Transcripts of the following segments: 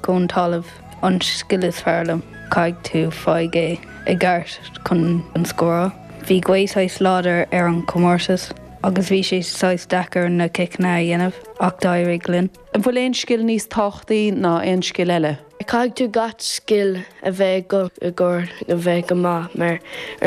go an talamh an scil is fearr liom, caithfidh tú, faigh é i gceart chun scóráil. Bhí gaoth saghas láidir ar an comórtas agus bhí sé saghas deacair na ciceanna a dhéanamh ach d'éirigh linn. An bhfuil aon scil níos tábhachtaí ná aon scil eile? Caithfidh tú gach scil a bheith agat i gcomhair a bheith go maith ar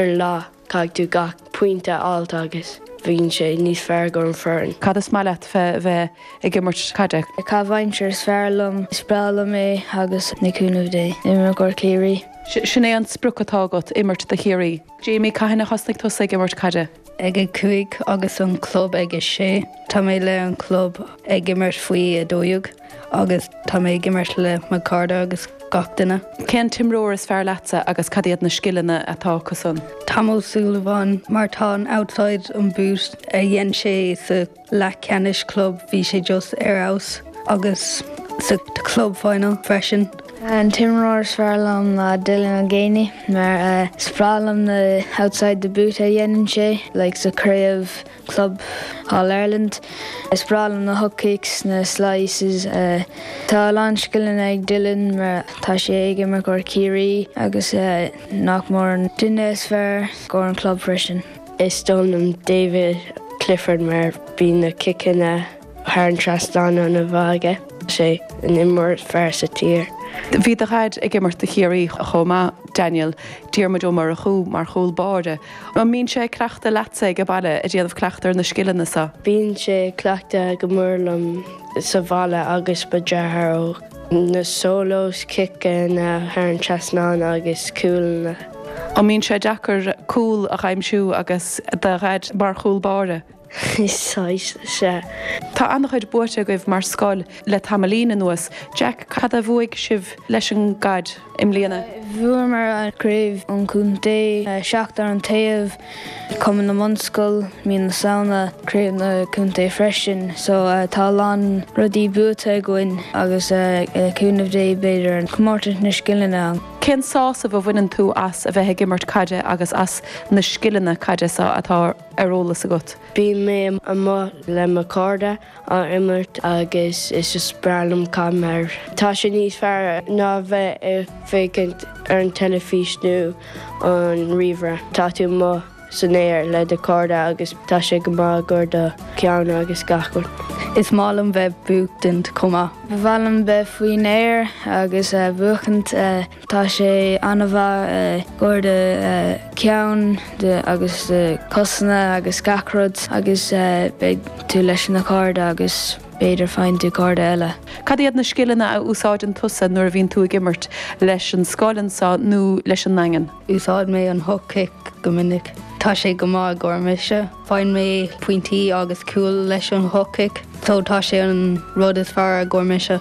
an lá. Caithfidh tú gach pointe a fháilt agus bhíonn sé níos fearr go an foireann. Cad is maith leat fé bheith ag imirt caide? Caitheamh aimsire is fearr liom. Is breá liom é agus le cúnamh Dé imirt i gcomhair Ciarraí. Sin é an sprioc atá agat, imirt do Chiarraí? Jamie, Cathain a thosnaigh tusa ag imirt caide? ag a cúig agus an club ag a sé. Tá mé le an club ag imirt faoi 12. agus tá mé ag imirt le mo cairde agus gach duine. Cén t-imreoir is fearr leatsa agus cad iad na scileanna atá acusan? Tom Ó Súilleabháin mar tá an outside an boot a dhein sé sa leathcheannais club bhí sé just ar fheabhas agus sa club final freisin. An t-imreoir is fearr liom ná Dylan Ó Géine mar is breá liom na outside the boot a dhéanann sé like sa craobh. Club All Ireland. Is breá liom na hook kicks, na slices. Tá a lán scileanna ag Dylan mar tá sé ag imirt i gcomhair Ciarraí agus nach mór an duine is fearr i gcomhair an club freisin. Is dóigh liom David Clifford mar bíonn na ciceanna. thar an trasnán ana-mhaith aige. An imreoir is fearr sa tír. Bhí do dhaid ag imirt do Chiarraí chomh maith Daniel, Diarmuid Ó Murchú mar chúl báire. An mbíonn sé ag cleachtadh leatsa ag an bhaile ag déanamh cleachtadh ar na scileanna seo? Bíonn sé ag cleachtadh go mór liom sa bhaile agus mo deartháir, ó na solos, ciceanna thar an trasnán agus cúlanna. An mbíonn sé deacair cúl a aimsiú agus do dhaid mar chúl báire? Saghas, sea. Tá an-chuid buaite agaibh mar scoil le tamaillín anuas. Jack, cad a bhuaigh sibh leis an gcaid i mbliana? Bhuamar craobh an chontae, seacht ar an taobh, cumann na mbunscol, mí na Samhna, craobh na contae freisin. So tá a lán rudaí buaite againn agus le cúnamh Dé b'fhéidir comórtas na scileanna. Cén sásamh a bhaineann tú as a bheith ag imirt caide agus as na scileanna caide seo atá ar eolas agat. Bíonn mé amuigh le mo cairde á imirt agus is is breá liom caid mar tá sé níos fearr ná a bheith ag féachaint ar an teilifís nó an ríomhaire. Tá tú amuigh san aer le do chairde agus tá sé go maith i gcomhair do cheann agus gach rud. Is maith liom bheith ag buachtaint chomh maith. Ba mhaith liom bheith faoin aer agus buachaint. Tá sé an-mhaith i gcóir do cheann agus do chosanna agus gach rud agus beidh tú leis na cairde agus b'fhéidir faigheann tú cairde eile. Cad iad na scileanna a úsáideann tusa nuair a bhíonn tú ag imirt leis an scoil anseo nó leis an nDaingean? Úsáid mé an hook kick go minic. Tá sé go maith i gcóir mise. Faigheann mé pointí agus cúil leis an hook kick so tá sé an rud is fearr i gcóir mise.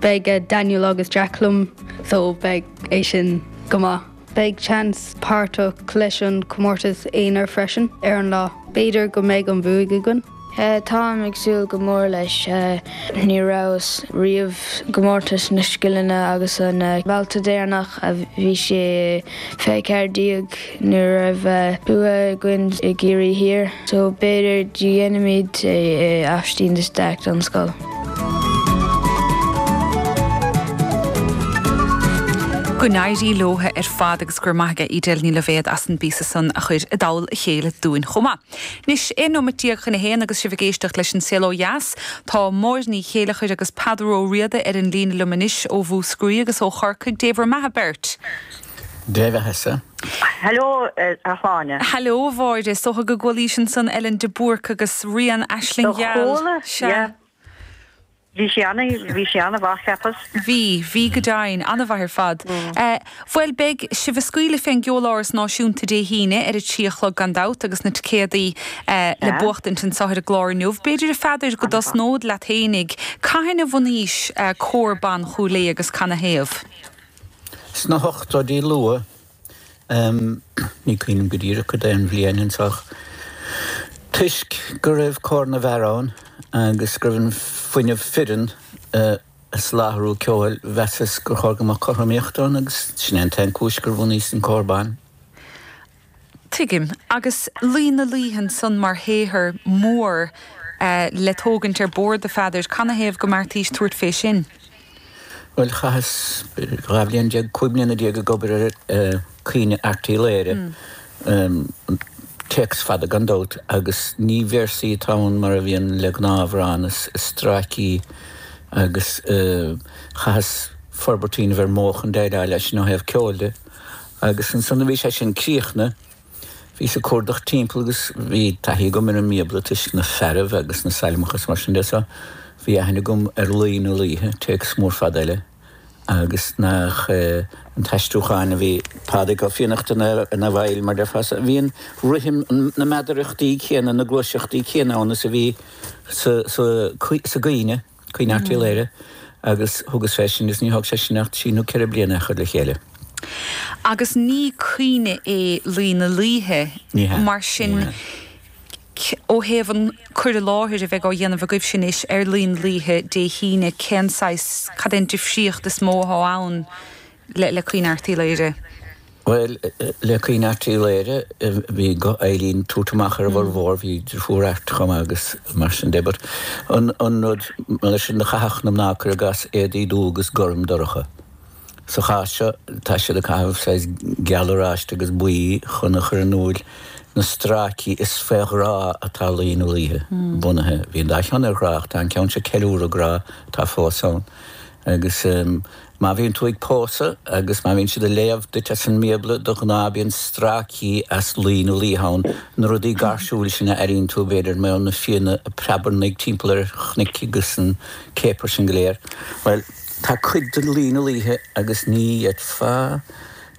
Beidh Daniel agus Jack liom so beidh é sin go maith. Beidh chance páirteach leis an comórtas aonair freisin ar an lá. B'fhéidir go mbeidh an bhuaidh againn. Táim ag súil go mór leis. Ní rabhas riamh i gcomórtas na scileanna agus an babhta deireanach a bhí sé fé 14. Ní raibh bua againn i gCiarraí Thiar, so b'fhéidir dhéanfaimid é i Aibhistín de Staic don scoil. Go n-éirí leo ar fad agus go raibh maith aige Edel Ní Loibhéid as an bpíosa san a chuir i dtoll a chéile dúinn chomh maith. Anois, 11 nóimeat chun a haon agus sibh ag éisteacht leis An Saol Ó Dheas. Tá Máire Ní Chéilleachair agus Peadar Ó Riada ar an líne liom anois ó Mhúscraí agus ó Chorcaigh. Dé bhur mbeatha beirt! Dé bheathasa. Hello, a Shláine. Hello, a Mháire. Is dóigh go gcualaís ansan Ellen de Búrca agus í ag rá an Aisling Gheal? Do chuala, yeah. Bhí sí ana, bhí sí ana mhaith cheapas. Bhí, bhí go deimhin, ana mhaith ar fad. Bhuel, beidh sibh a' scaoileadh fén gCeoláras Náisiúnta Dé hAoine ar a trí a chlog gan dabht agus na ticéadaí le buachtaint anseo ar an gclár inniu. B'fhéidir, a Pheadair, go dtosnód leat fhéinig. Cathain a bhunaís Cór Ban Chúil Aodha agus canathaobh? Sna hochtóidí luatha, ní cuimhin liom go díreach cad é an bhliain anois ach, toisc go raibh cór na bhfear ann agus go raibh an fuinneamh fireann ag soláthrú ceoil, mheasas gur chóir go mbeadh cothromaíocht ann agus sin é an t-aon chúis gur bhunaíos an cór ban. Tuigim, agus Laoi na Laoithe ansan mar shaothar mór le tógaint ar bord, a Pheadair, canathaobh go mbeartaís tabhairt fé sin? Bhuel, chaitheas dhá bhliain déag, cúig mbliana déag ag obair ar Caoineadh Airt Uí Laoghaire, téacs fada gan dabht, agus ní véarsaí atá ann mar a bhíonn le gnáthamhráin, is stráicí, agus chaitheas forbairt a dhéanamh ar mhodh chun déileáil leis, ó thaobh ceoil de. Agus ansan a bhí sé sin críochnaithe, bhíos ag cuardach timpeall agus bhí taithí agam ar an mBíobla toisc na fearaibh agus na sailmeacha is mar sin de so bhí aithne agam ar Laoi na Laoithe, téacs mór fada eile agus nach an t-aistriúchán a bhí Pádraig Ó Fiannachta ina bhfeighil mar déarfá so. Bhí an rithim, na meadarachtaí céanna, na gluaiseachtaí céanna ann is a bhí sa gcaoineadh. Caoineadh Airt Uí Laoghaire agus thugas féachaint, is níor thóg sé sin ach trí nó ceithre bliana a chur le chéile. Agus ní caoineadh é Laoi na Laoithe, mar sin, ó thaobh an cur i láthair a bheidh á dhéanamh agaibhse anois ar Laoi na Laoithe Dé hAoine, cén saghas, cad é an difríocht is mó atá ann le le Caoineadh Airt Uí Laoghaire. Bhuel, le Caoineadh Airt Uí Laoghaire, bhí guth Eibhlín tabhairt amach ar a bhfurmhór, bhí deirfiúr Airt chomh maith agus mar sin de but an an rud leis sin do chaitheadh na mná cur i gcas éadaí dubh agus gorm dorcha. Sa chás seo tá siad ag caitheamh saghas geal oráiste agus buí chun a chur in úil na stráicí is fé ghrá atá Laoi na Laoithe bunaithe, bhí an dá cheann ar ghrá ach tá an ceann seo ceiliúradh grá atá fós ann agus ehm, Má bhíonn tú ag pósadh agus má bhíonn siad ag léamh duit as an mBíobla, de ghnáth bíonn stráicí as Laoi na Laoithe ann, na rudaí gáirsiúil sin a airíonn tú b'fhéidir mar na fianna ag preabarnaigh timpeall ar chnoic agus an céapar sin go léir. Bhuel, tá cuid de Laoi na Laoithe agus ní fhéadfá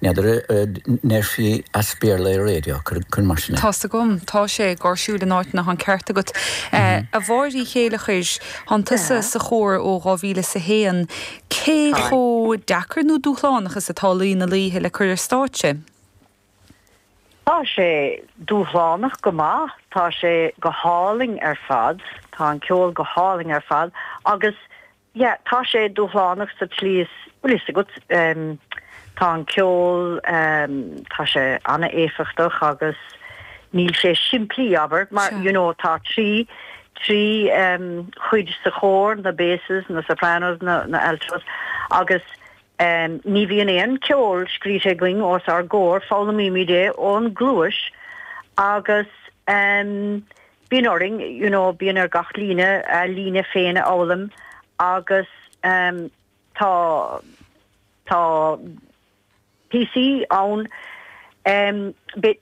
N'fheadar an ndéarfaí as Béarla ar raidió cuir mar sin é? Tá's agam. Tá sé. Gáirsiúil in áiteanna. Tá an ceart agat. A Mháire Ní Chéileachair, tánn tusa sa chór ó 2001. Cé chomh deacair nó dúshlánach is atá Laoi na Laoithe le cur ar stáitse? Tá sé dúshlánach go maith. Tá sé go hálainn ar fad. Tá an ceol go hálainn ar fad agus. yeah tá sé dúshlánach sa tslí is bhfuil fhios agat em tá an ceol em tá sé an-éifeachtach agus níl sé simplí abair mar Sure. you know tá trí trí em chuid sa chór na basses na sopranos na na altos agus em ní bhíonn aon ceol scríte againn os ár gcomhair foghlaimímid é ón gcluais agus em bíonn orainn, you know bíonn ar gach líne a líne féin a fhoghlaim agus em tá, tá píosaí ann em but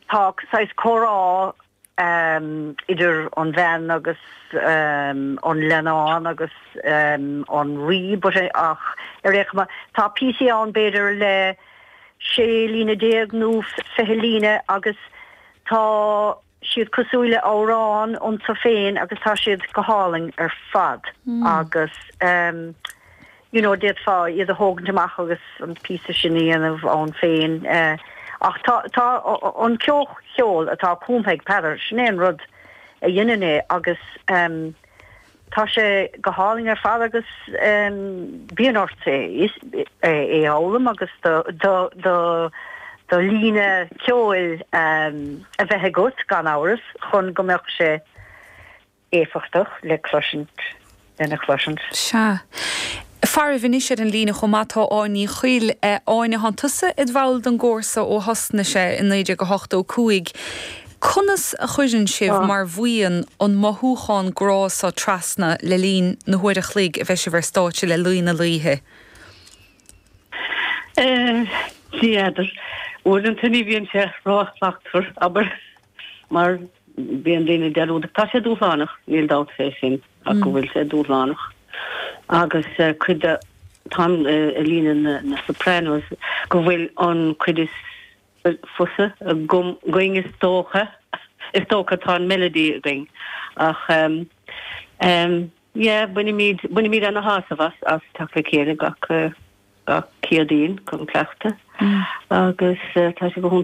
tá saghas comhrá em idir an bhean agus em an leannán agus em an rí but eh ach ar aon chuma tá píosaí ann b'fhéidir le sé líne déag nó fiche líne agus tá. siad cosúil le hamhrán iontu féin agus tá siad go hálainn ar fad agus ehm you know d'fhéadfá iad a thógaint amach agus an píosa sin a dhéanamh ann féin eh ach tá tá an comhcheol atá cumtha ag Peadar sin é an rud a dheineann é agus ehm Tá sé go hálainn ar fad agus bíonn ort é a fhoghlaim agus do líne ceoil a bheith agat, gan amhras, chun go mbeadh sé éifeachtach le cloisint, lena chloisint. Sea. Faraibh anois ar an líne chomh maith tá Áine Ní Chuill. Áine, thá tusa id bhall den gcór sa ó thosnaigh sé i 1985. Conas a chuireann sibh mar bhuíon an mothúchán grá sa trasna le linn na huaire an chloig a bheidh sibh ar stáitse le Laoi na Laoithe? N'fheadar. Uaireanta ní bhíonn sé ró-shlachtmhar, abair. Mar bíonn daoine dearúdach, tá sé dúshlánach, níl dabht fé sin ach go bhfuil sé dúshlánach agus cuid de, tá líne na Sopranos, go bhfuil an cuid is fusa againn is dócha, is dócha tá an melody againn ach yeah bainimid, bainimid ana-shásamh as, as teacht le chéile gach, gach Céadaoin chun cleachtadh agus tá sé go hiontach.